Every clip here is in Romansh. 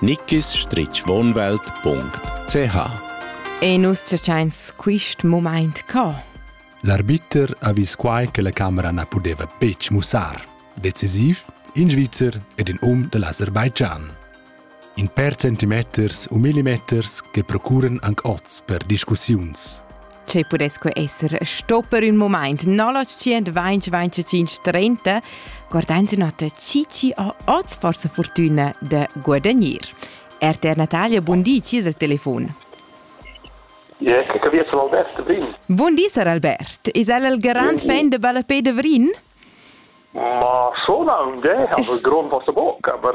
nickisstrichwohnwelt.ch E nus cercains quist mumaint co? L'arbiter ha vis quai che la camera na pudeva betg mussar. Decisiv, in Svizzer ed in um da l'Aserbaidschan. In per centimeters u millimeters che procuran anc oz per discussiuns. che pudess quei esser sto per ün moment 0925 30 guardanzi nota cici a oz forse fortuna de guadagnir. RTR Natalia, buon di, ci il telefon. Yeah, che via sono Albert Brin. Buon di, Sir Albert. Is el il grand fan de Ballapé de Vrin? Ma schon un, aber Grund was der Bock, aber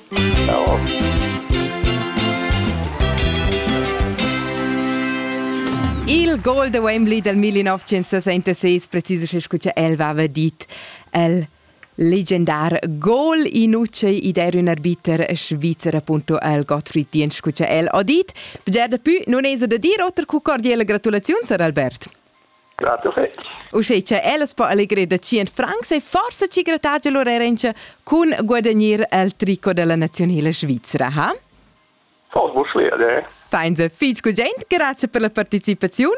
Il gol da Wembley dal 1976 precisescha sco cha el vava dit el legendar gol inucei id era ün arbiter svizzer appunto al Gottfried Diensch scu cha el ho dit. Bger da pü nun esa da dir oter cu cordiela gratulaziuns, Sir Albert. Grato fetg. Uschè cha ellas po allegrer da tschient francs e forsa chi grattagia lur erentscha cun guadagnir el tricot della nazionela svizra, ha? Fos vos schwer, eh? Fein se fitg gut gent, grazie per la partecipaziun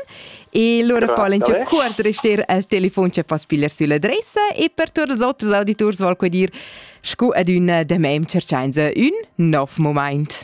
e lura po l'entscha cuort rester al telefon che poss pigliar sull'adressa e per tutti els oters auditors vol dir scu ad ün demem cerchainse ün nov moment.